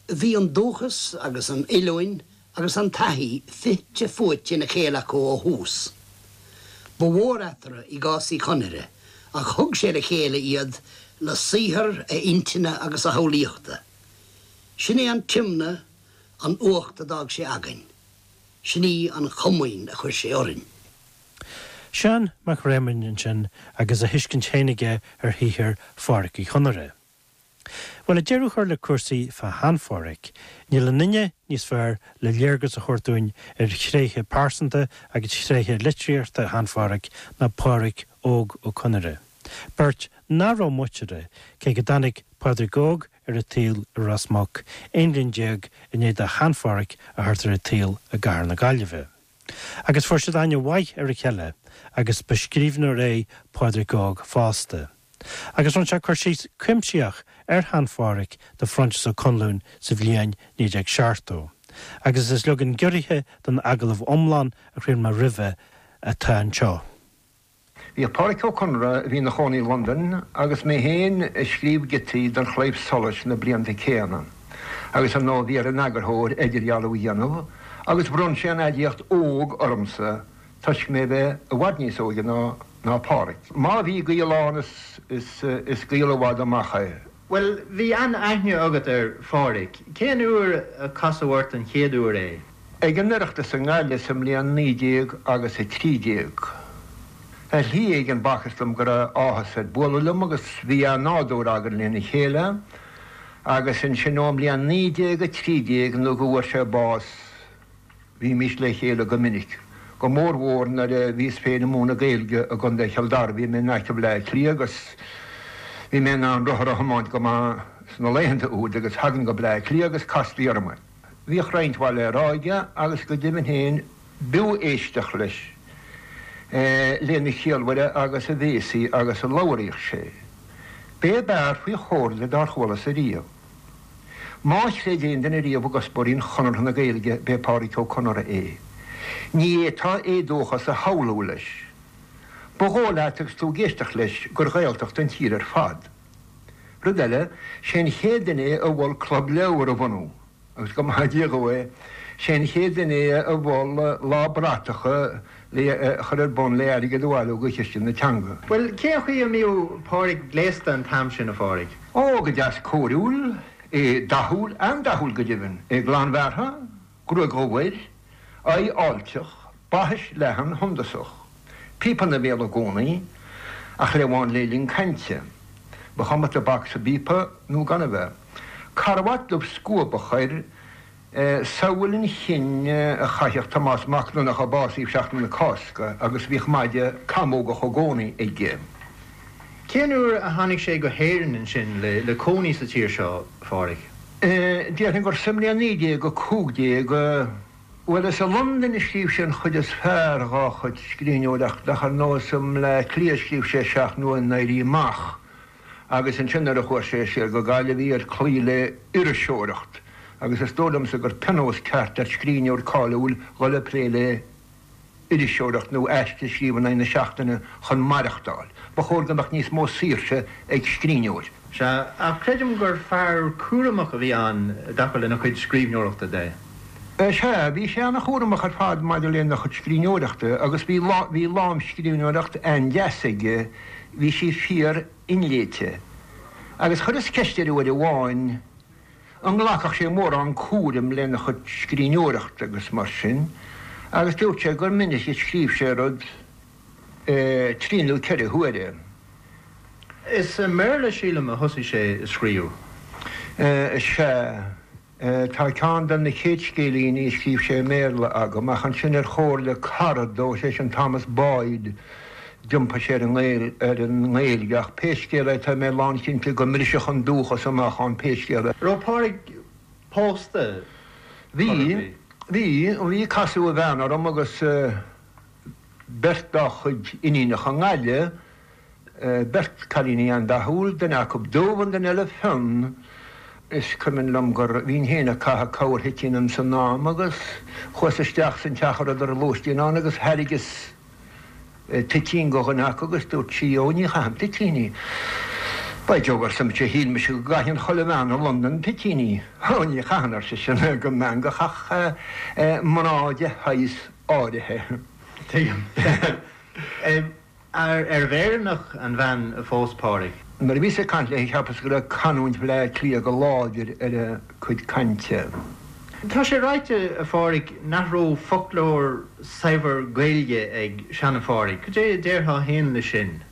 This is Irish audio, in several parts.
Bhí an dúchas agus an oiliúint agus an taithí fite fuaite ina chéile acu ó thús. Ba mhór eatarthu i gcás Uí Chonaire ach thug sé le chéile iad le saothar a intinne agus a shamhlaíochta. Sin é an tiomna, an uacht a d'fhág sé againn. Sin í an chomaoin a chuir sé orainn. Seán Mac Réamoinn ansin agus a thuiscint féin aige ar shaothar Phádraic Uí Chonaire. Bhuel, ag deireadh an chláir le cúrsaí fá Shean-Phádhraic, níl aon duine níos fearr le léargas a thabhairt dúinn ar thréithe pearsanta agus thréithe litríochta Shean-Phádhraic ná Pádhraic Óg Ó Conaire, beirt nach raibh muinteartha, cé go dtáinig Pádraic Óg ar an tsaol i Ros Muc, aon bhliain déag i ndiaidh do Shean-Phádhraic a thabhairt ar an tsaol i gcathair na Gaillimhe. Agus fuair siad aithne mhaith ar a chéile agus ba scríbhneoir é Pádraig Óg fosta. Agus rinne sé cur síos cuimsitheach ar Shean-Phádraic do Phroinsias Ó Conluain sa bhliain 1970, agus is leagan giorraithe den agallamh iomlán a chraol mé roimhe atá anseo. Bhíodh Pádraic Ó Conaire, a bhí ina chónaí i Londain, agus mé féin ag scríobh giotaí don Chlaidheamh Solais sna blianta céanna, agus ar ndóigh bhí ar an eagarthóir idirdhealú a dhéanamh, agus bhronn sé an aidiacht 'óg' ormsa toisc mé a bheith i bhfad níos óige ná Pádraic. Má bhí gaol ann, is gaol i bhfad amach é. Bhuel, bhí an-aithne agat ar Phádhraic. Cén uair a casadh ort an chéad uair é? Ag an Oireachtas i nGaillimh sa mbliain naoi déag agus a trí déag. Ar shlí éigin b'fhacthas dom go raibh áthas air bualadh liom agus bhí an-nádúr againn lena chéile agus ansin ón mbliain naoi déag a trí déag nó go bhfuair sé bás, Bhímis le chéile go minic, go mórmhór nuair a bhíos féin ag múineadh Gaeilge i gContae Chill Dara. Bhí mé in aice Bhaile Átha Cliath agus bhí mé in ann rothar a thiomáint go maith sna laethanta úd agus thagainn go Baile Átha Cliath agus castaí orm é. Bhíodh roinnt mhaith le rá aige agus go deimhin féin b'fhiú éisteacht leis lena chiallmhaire agus a bhéasaí agus a labhraíodh sé. B'é ab fhearr faoi chomhairle dár chualasa riamh. Má chreid aon duine riamh i gcuspóirí Chonartha na Gaeilge b'é Pádraic Ó Conaire é. Ní fhéadfá éadóchas a shamhlú leis. Ba dhóigh leat agus tú ag éisteacht leis gur Ghaeltacht an tír ar fad. Rud eile, sé an chéad duine é a mhol Club Leabhar a bhunú agus go maithe Dia dhó é, sé an chéad duine é a mhol Lá Bratacha, le chur ar bun le airgead a bhailiú go Chiste na Teanga. Bhuel, cén chaoi a mbíodh Pádraig gléasta an t-am sin, a Phádraig? Ó, go deas cóiriúil, é dathúil, an-dathúil go deimhin, é glanbhearrtha, gruaig dhubh air, aghaidh fháilteach, baithis leathan shuntasach, píopa ina bhéal i gcónaí, ach amháin le linn cainte, ba chuma tobac sa bpíopa nó gan a bheith, carbhat dubh scuabach air, samhail an chinn a chaitheadh Tomás Mac Donnacha a básaíodh Seachtain na Cásca agus bhíodh maide camógach i gcónaí aige. Cén uair a tháinig sé go hÉirinn ansin le cónaí sa tír seo, Phádraig? Déarfainn gur sa mbliain 1915, bhuel, is i Londain a scríobh sé an chuid is fearr dhá chuid scríbhneoireachta ach ar ndóigh is i mBaile Átha Cliath a scríobh sé Seacht mBua an Éirí Amach agus ansin nuair a chuaigh sé siar go Gaillimh bhí air cloí le hiriseoireacht agus is dóigh liomsa gur pionós ceart ar scríbhneoir cáiliúil dhul ag plé le hiriseoireacht nó aiste a scríobh in aghaidh na seachtaine chun maireachtáil. Ba chóir go mbeadh níos mó saoirse ag scríbhneoir. Sea, ach creidim gur fear cúramach a bhí ann i dtaca lena chuid scríbhneoireachta de. Sea, bhí sé an-chúramach ar fad maidir lena chuid scríbhneoireachta agus bhí lámhscríbhneoireacht an-deas aige. bhí sí fíor inléite, agus chuireas ceist air uair amháin an nglacfadh sé mórán cúraim lena chuid scríbhneoireachta agus mar sin, agus dúirt sé gur minic a scríobh sé rud trí nó ceithre huaire. Is i mBéarla, sílim, a thosaigh sé ag scríobh. Sea. Tá ceann de na chéad scéilíní a scríobh sé i mBéarla agam ach ansin ar chomhairle cara dó is é sin Thomas Boyd d'iompaigh sé ar an nGaeilge ach pé scéal é tá mé lánchinnte go mbrisfeadh an dúchas amach ann pé scéal é. An raibh Pádraig pósta ar chor ar bith? Bhí, bhí, casadh a bhean orm agus beirt dá chuid iníonacha i nGaillimh beirt cailíní an-dathúil, duine acu dubh an duine eile fionn. Is cuimhin liom gur bhínn féin ag caitheamh corrthoitín ins an am agus chuas isteach san teach a rabhadar ar lóistín ann agus thairgeas toitín go dhuine acu agus dúirt sí Ó ní chaithim toitíní. By Jove arsa mise shíl mise go gcaitheann chuile bhean i Londain toitíní. Ó ní chaitheann ar sise go meangach ach mná de shaghas áirithe. Tuigim. Arbh Éireannach an bhean a phós Pádraig? Nuair a bhíos ag caint léi cheapas go raibh canúint Bhaile Átha Cliath go láidir ar a cuid cainte. Tá sé ráite, a Phádraig, nach raibh foclóir saibhir Gaeilge ag seana-Phádraig. Cad é a déarfá féin leis sin?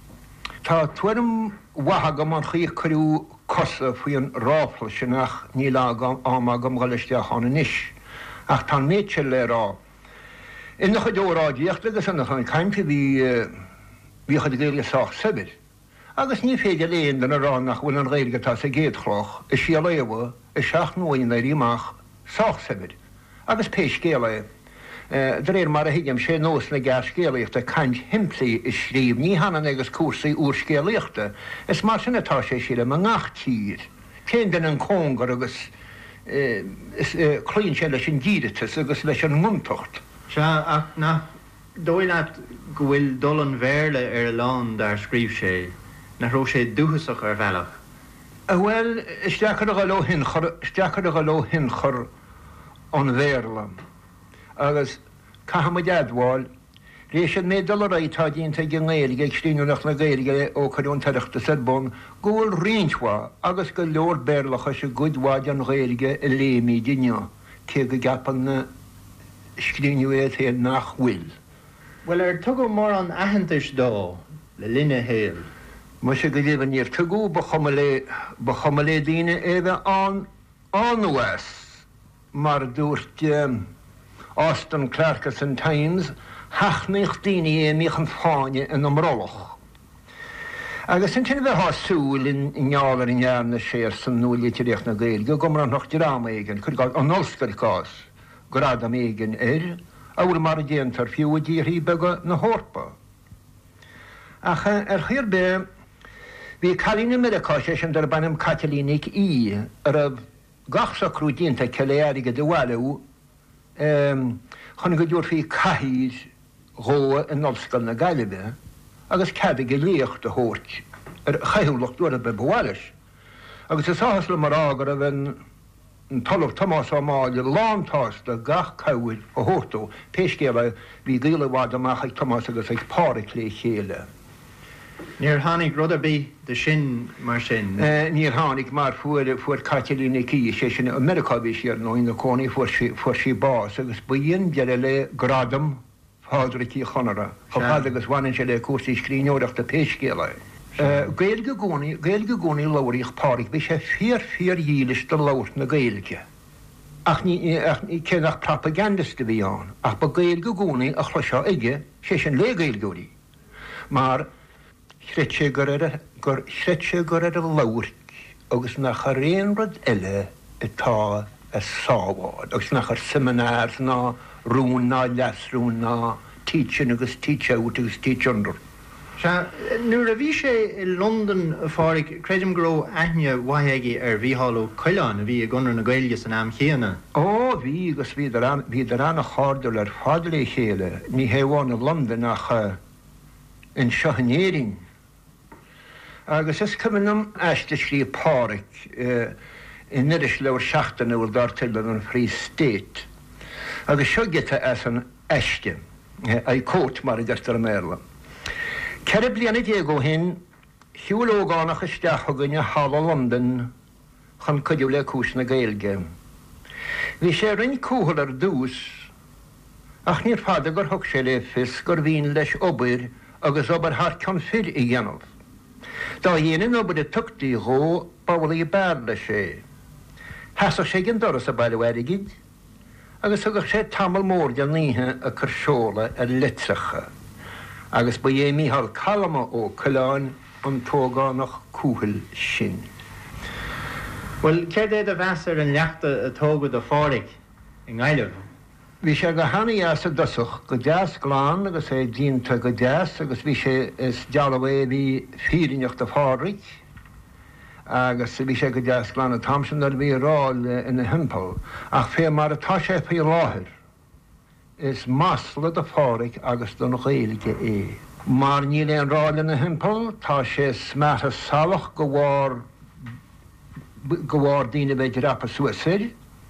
Tá tuairim mhaith agam an chaoi a cuireadh cosa faoi an ráfla sin ach níl am agam dhul isteach ann anois. Ach tá an méid seo le rá. Ina chuid óráidíochta agus ina chuid cainte bhí bhí a chuid Gaeilge sách saibhir agus ní féidir le haon duine a rá nach bhfuil an Ghaeilge atá sa gCéad Chloch i Síol Éabha i Seacht mBua an Éirí Amach sách saibhir agus pé scéal é, de réir mar a thuigim, sé nós na gearrscéalaíochta caint shimplí a scríobh, ní hionann agus cúrsaí úrscéalaíochta. Is mar sin atá sé, sílim, i ngach tír. Téann duine an cóngar agus cloíonn sé leis an díreatas agus leis an ngontacht. Sea, ach nach dóigh leat go bhfuil dul an Bhéarla ar a lán dár scríobh sé, nach raibh sé dúchasach ar bhealach? Bhuel, is deacair a dhul ó thionchar, is deacair a dhul ó thionchar an Bhéarla agus caithfidh muid a admháil, Tar éis an méid dul ar aghaidh atá déanta ag an nGaeilge, ag scríbhneoireacht na Gaeilge ó cuireadh an tOireachtas ar bun, go bhfuil roinnt mhaith, agus go leor Béarlachais i gcuid mhaith den Ghaeilge a léimíd inniu, cé go gceapann na scríbhneoirí féin nach bhfuil. Bhuel, ar tugadh mórán aitheantais dó le linn a shaoil? Muise go deimhin níor tugadh, ba chuma le, ba chuma le daoine é a bheith ann nó as. Mar a dúirt Austin Clarke san Times, sheachnaíodh daoine é a mbíodh an fáinne ina mbrollach. Agus ansin bheitheá ag súil, i ngeall ar a ndearna sé ar son nua-litríocht na Gaeilge, go mbronnfadh dream éigin, cuir i gcás, an ollscoil, cás, gradam éigin air, amhail mar a déantar fiú i dtíorthaí beaga na hEorpa. Ach ar chaoi ar bith, bhí cailín i Meiriceá, sé sin, darb ainm Caitlín Nic Aoidh, a raibh. gach socrú déanta aici le airgead a bhailiú chun go dtabharfaí cathaoir dhó in Ollscoil na Gaillimhe agus cead aige léacht a thabhairt ar a chaothúlacht uair ar bith ba mhaith leis. Agus is áthas liom a rá go raibh an tOllamh Tomás Ó Máille lántsásta gach cabhair a thabhairt dó. Pé scéal é, bhí gaol i bhfad amach ag Tomás agus ag Pádraig le chéile. Níor tháinig rud ar bith de sin, mar sin. Níor tháinig, mar fuair, fuair Caitlín Nic Aoidh, sé sin, i Meiriceá a bhí sí, ar ndóigh, ina cónaí, fuair sí, fuair sí bás agus b'in deireadh le gradam Phádraic Uí Chonaire chomh fada agus bhaineann sé le cúrsaí scríbhneoireachta pé scéal é. Gaeilge i gcónaí, Gaeilge i gcónaí a labhraíodh Pádraic, bhí sé fíor, fíordhílis do labhairt na Gaeilge ach ní, ach ní, cé nach propagandist a bhí ann ach ba Gaeilge i gcónaí a chloisfeá aige, sé sin, le Gaeilgeoirí. mar chreid sé gur chreid sé gur ar a labhairt agus nach ar aon rud eile atá a sábháil agus nach ar seminars ná rúin ná leasrúin ná teach-in agus teach-out agus teach-under. Sea, nuair a bhí sé i Londain, a Phádraig, creidim go raibh aithne mhaith aige ar Mhícheál Ó Coileáin, a bhí i gConradh na Gaeilge san am chéanna. Ó, bhí, agus bhíodar ann, bhíodar ana-cháirdiúil ar fad le chéile, ní hamháin i Londain ach anseo in Éirinn. Agus is cuimhin liom aiste a scríobh Pádraig in irisleabhar seachtainiúil dar teideal an Free State agus seo giota as an aiste, I quote mar a deirtear i mBéarla. Ceithre bliana déag ó shin, shiúil ógánach isteach chugainn sa halla i Londain, chun cuidiú le cúis na Gaeilge. Bhí sé roinnt cúthail ar dtús, ach níorbh fhada gur thug sé le fios gur mhian leis obair, agus obair thar cionn fir, a dhéanamh. Dá dhéine an obair a thugtaí dhó, b'amhlaidh a b'fhearr leis é. Sheasadh sé ag an doras ag bailiú airgid. agus thugadh sé tamall mór den oíche ag cur seolta ar leitreacha, agus ba é Micheál Calma Ó Coileáin an t-ógánach cúthail sin. Bhuel, céard é do mheas ar an leacht a tógadh do Phádhraic i nGaillimh? Bhí sé go hana-dheas i dtosach, go deas glan agus é díonta go deas agus bhí sé, is dealbh é a bhí fírinneach do Phádhraic, agus bhí sé go deas glan an t-am sin nuair a bhí ráil ina thimpeall, ach fé mar atá sé faoi láthair, is masla do Pháraic agus don Ghaeilge é, mar níl aon ráil ina thimpeall, tá sé smeartha salach de bharr daoine a bheith ag dreapadh suas air.